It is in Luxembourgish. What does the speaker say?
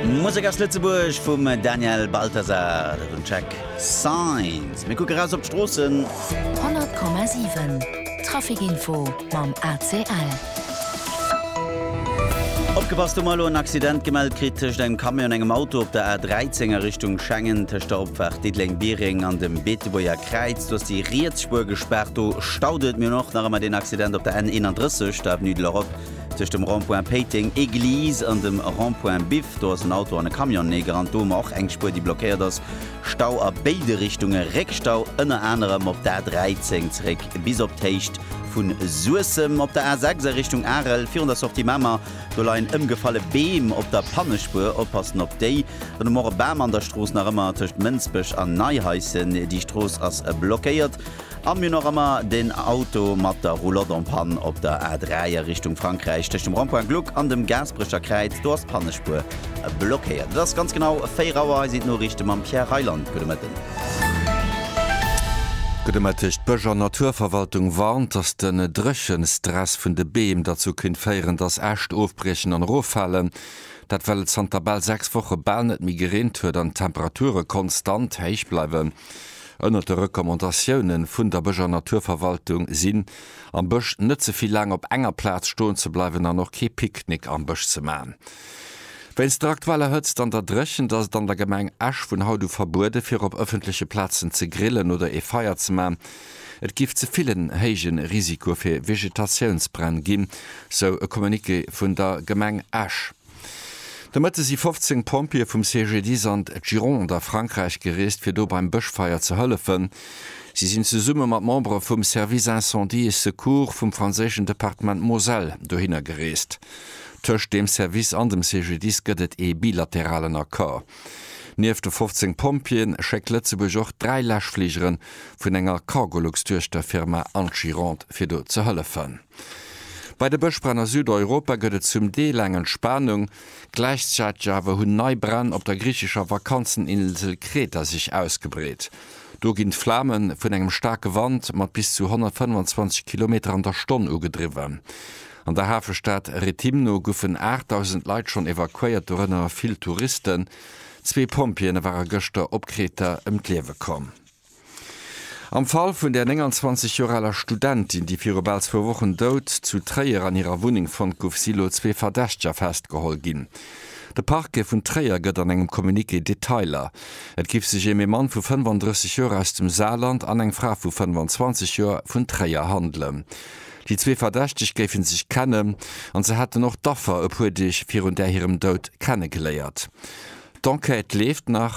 Musek aus Lëtzebuerg vum Daniel Balthasar, dat un Track Signs. Mir kucke raus op d'Stroossen. 100,7 Traficinfo mam ACL. Opgepasst, Hu mer elo en Accident gemellt kritt tëscht engem Camion an engem Auto op der A 13 a Richtung Schengen, tëscht der Opfaart Diddeleng-Biereng an dem Beetebuerger Kräiz. Do ass déi riets Spuer gespaart, do staut et. Mir hunn och nach ëmmer deen Accident op der N 31, der Avenue de l'Europe Tëscht dem Rond-point Péiteng Église an dem Rond-point Biff, do ass en Auto an e Camion neegerannt. Do hu mer och eng Spuer, déi blockéiert ass. Stau a béide Richtunge, Réckstau ënner anerem op der A13 zeréck bis op d'Héicht vu Suessem. Op der A6 a Richtung Arel virun der Sortie Mamer, do leien ëmgefalle Beem op der Pannespuer. Oppassen op déi. Dann hu mer och e Bam an der Strooss, nach ëmmer tëscht Mënsbech an Neihaischen. Déi Strooss ass blockéiert. An mir nach emmer den Auto mat der Roulotte en panne op der A3 a Richtung Frankräich tëscht dem Rond-point Gluck an dem Gaasperecher Kräiz. Do ass d'Pannespuer blockéiert. Et ass ganz genau 4 Auer. Hei sinn d'Noriichte mam Pierre Reyland. Gudde Mëtten. Gudde Mëtteg. D'Bësch an Naturverwaltung warnt, dass de Dréchenstress vun de Beem derzou kéint féieren, dass Äscht ofbriechen an eroffalen. Dat well et zanter bal 6 Woche bal net méi gereent huet an d'Temperature konstant héich bleiwen. Ënnert de Recommandatioune vun der Bësch an Naturverwaltung sinn, am Bësch net ze vill laang op enger Plaz stoen ze bleiwen an och kee Picknick am Bësch ze maachen. Wéinst der aktueller Hëtzt an der Dréchent ass et an der Gemeng Esch vun haut u verbueden, fir op ëffentleche Plazen ze grillen oder ee Feier ze maachen. Et géif ze vill en héije Risiko fir Vegetatiounsbränn ginn, sou e Communiqué vun der Gemeng Esch. De Mëtte si 15 Pompjeeë vum CGDIS an d'Gironde a Frankräich gereest, fir do beim Bëschfeier ze hëllefen. Si sinn zesumme mat Membere vum Service Incendie et Secours vum franséischen Departement Moselle dohinner gereest. Tëscht deem Service an dem CGDIS gëtt et ee bilateralen Accord. Nieft de 15 Pompjeeën schéckt Lëtzebuerg och dräi Läschfligeren vun enger Cargolux-Duechterfirma an d'Gironde, fir do ze hëllefen. Bei de Bëschbränn a Südeuropa gëtt et zum Deel eng Entspanung. Gläichzäiteg awer hunn nei Bränn op der griichescher Vakanzeninsel Kreta sech ausgebreet. Do ginn d'Flame vun engem staarke Wand mat bis zu 125 Kilometer an der Stonn ugedriwwen. An der Hafestad Rethymno goufen 8.000 Leit schonn evakuéiert, dorënner vill Touristen. Zwee Pompjeeë ware gëschter op Kreta ëm d'Liewe komm. Am Fall vun där 29 Joer aler Studentin, déi viru bal zwou Wochen dout zu Tréier an hirer Wunneng fonnt gouf, si lo zwee Verdächteger festgeholl ginn. De Parquet vun Tréier gëtt an engem Communiqué Detailer. Et giff sech ém ee Mann vu 35 Joer aus dem Saarland an eng Fra vu 25 Joer vun Tréier handelen. Déi zwee Verdächteg géife sech kennen an se hätten och d'Affer e puer Deeg virun där hirem Dout kennegeléiert. D'Enquête leeft nach.